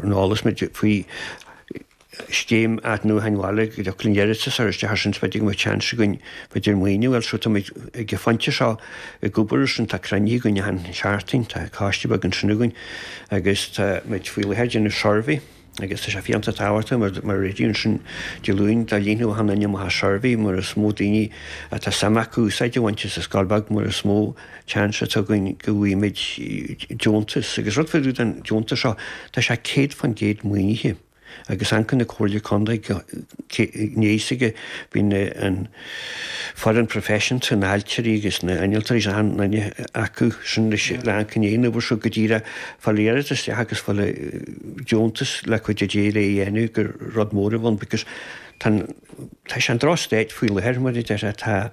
an eolas muid faoi scéim athnuachain bhaile go dtí an deireadh so, sular isteach ar sin bheidh an seans againn b'fhéidir maoiniú a fháil so tá muid ag an phointe seo ag obair ar sin tá cruinnithe againn i gCeann Trá tá coiste beag ansin againn agus tá muid faoi láthair ag déanamh suirbhé agus tá sé iontach tábhachtach mar mar a rinne ansin Dé Luain do líonadh an suirbhé mar is mó daoine atá suim acu úsáid a bhaint as an scoil beag mar is mó an seans atá againn go bhfaighimid deontas agus rud faoi rud an deontas seo, tá sé 100% maoinithe agus ón gceann na Comhairle Contae go mbeidh sé aige, bhí na an foireann proifisiúnta, na ailtirí agus na innealtóirí an-oinigh acu sin leis le amcan é an obair seo go díreach fáil iarratas isteach agus fáil deontas le cúnamh Dé le é dhéanamh go rud mór a bhun because tá an tá sé i ndroch-state faoi láthair mar a deir tá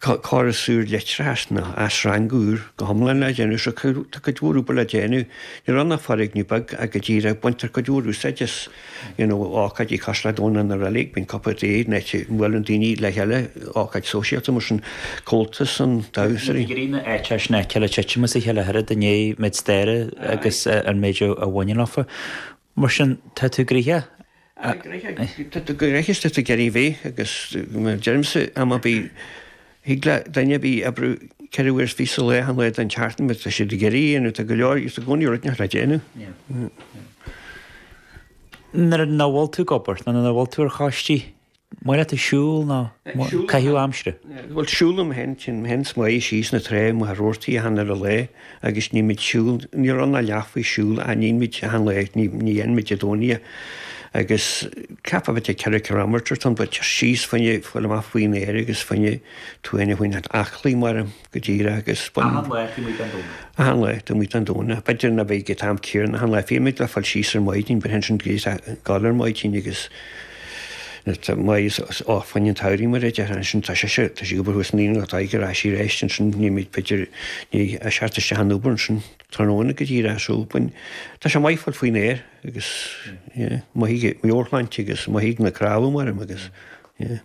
Córas úr leictreachais ná athshreangú go hiomlán le déanamh so tá cuid mhór obair le déanamh. Níl ann ach foirgneamh beag go díreach ach baintear cuid mhór úsáid as you know ócáidí cosúil le Domhnach na reilig bíonn cupa tae in áit a mbuaileann daoine le chéile ócáid sóisialta mar sin Comhaltas na damhsóirí. Cigirí na áiteanna sin a ligean titim as a chéile tar éis an méid staire agus an méid a bhaineann leofa. Mar sin, tá tú gnoitheach. Tá tú gnoitheach. Tá tú gnoitheach is tá tú ag iarraidh a bheith agus mar deirimse am ar bith thig le duine ar bith oibriú ceithre uair is fiche sa lá, achan lá den tseachtain mar tá siad ag iarraidh é a dhéanamh, tá go leor, tá i gcónaí rud éineach le déanamh. Nuair ná bhfuil tú ag obair nó nuair ná bhfuil tú ar choistí, An maith leat siúl nó caitheamh aimsire? Bhuel, siúlaim fhéin, téann mé fhéin is Máire síos an trá mo dheartháir achan uile lá agus nímid siúl, ní raibh ná leath faoi siúl a nímid achan lá, ní dhéanaimid i gcónaí é agus ceapaim b'fhéidir ceithre ciliméadar, tá an bóthar síos faoin, fáil amach faoin aer agus faoin, tú fhéin a choinneáil aclaí maram. go díreach agus b'in Achan lá nímid an Domhnach. achan lá nímid an Domhnach. B'fhéidir nach mbeidh ag an am céarna achan lá fímid le fáil síos ar maidin but ansin bímid a' gabháil ar maidin agus tá maith i gcomhair an tsamhraidh mar a déarfá ansin tá sise tá sí obair thuas an Aoine atá ag ar ais sí aríst ansin nímid b'fhéidir ní a' seart isteach an obair ansin tráthnóna go díreach so b'fhuin tá sé maith fáil faoin aer agus yeah maith ag ár sláinte agus maith ag na cnámha maram agus yeah.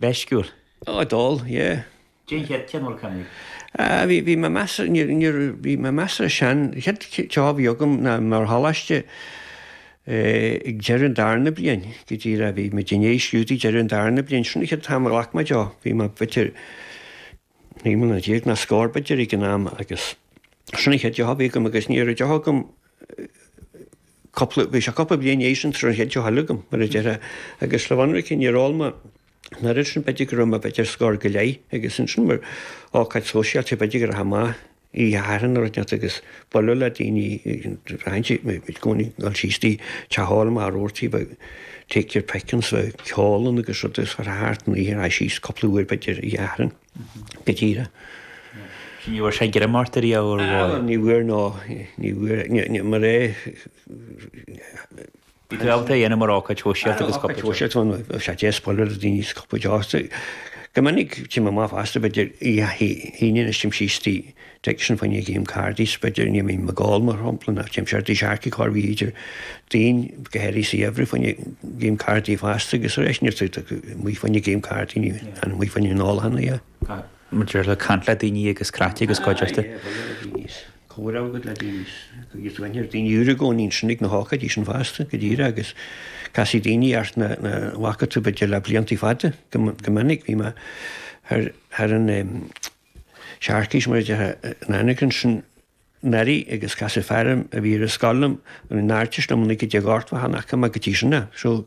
meisciúil. Oh, d'ól, yeah. Cén chead cineál cannaigh? Ah, bhí, bhí mé measartha, níor, níor, bhí mé measartha sean, chéad deoch a bhí agam ná mar choláiste eh, ag deireadh an darna bliain go díreach bhí muid in éis scrúduithe deireadh an darna bliain, sin an chéad t-am a ghlac mé deoch, bhí mé, b'fhéidir, Naoi mbliana déag nó scór b'fhéidir ag an am agus sin an chéad deoch a bhí agam agus ní raibh deoch agam cúpla, bhí sé cúpla bliain in éis sin sula raibh an chéad deoch eile agam mar a déarfá agus le bheith ionraic níor ól mé an oiread ansin b'fhéidir go raibh mé b'fhéidir scór go leith agus ansin mar ócáid sóisialta b'fhéidir go raibh deoch mhaith. dhearna rud ar neart agus bualadh le daoine aint i gcónaí dul síos go dtí teach óil mar a dúirt sí ba take your pickings bheadh ceol ann agus rud agus fuair thart an oíche ar aghaidh síos cúpla uair b'fhéidir a dhearna go díreach Sin ní bhfuair sé greim ort ariamh an bhfuair? Ní bhfuair ná ní bhfuair ní mar é Bhí tú ábalta é a dhéanamh mar ócáid shóisialta agus cupa tae. Ar an ócáid shóisialta bhí sé deas bualadh le daoine agus cupa tae a ól. Go minic téim amach fosta b'fhéidir oíche Aoine anois téim síos go dtí tigh sin fá choinne game cardaí 's b'fhéidir ní bhím ag ól mar shampla ná téim siar go dtí Searcaigh corr b'fhéidir daoine go háirithe sa gheimhreadh fá choinne game cardaí fosta agus aríst bím amuigh fá choinne game cardaí ní bhím amuigh fá choinne an óil cheana. Maidir le caint le daoine agus craic agus cuideachta. Aye, bhuel ar a bhíos. Comhar agat le daoine agus daoine úra i gcónaí ansin ag na hócáidí sin fosta go díreach agus casfaidh daoine ort nach bhfaca tú b'fhéidir le blianta fada. Go minic bhí mé ar an tSearcaigh mar a déarfadh an aonach ansin Mary agus casadh fear a bhí ar an scoil liom, an bhfuil a fhios agat Artist liom, an fhuic go dtí an Ghort bheadh an aca maith go dtí sin ná. So,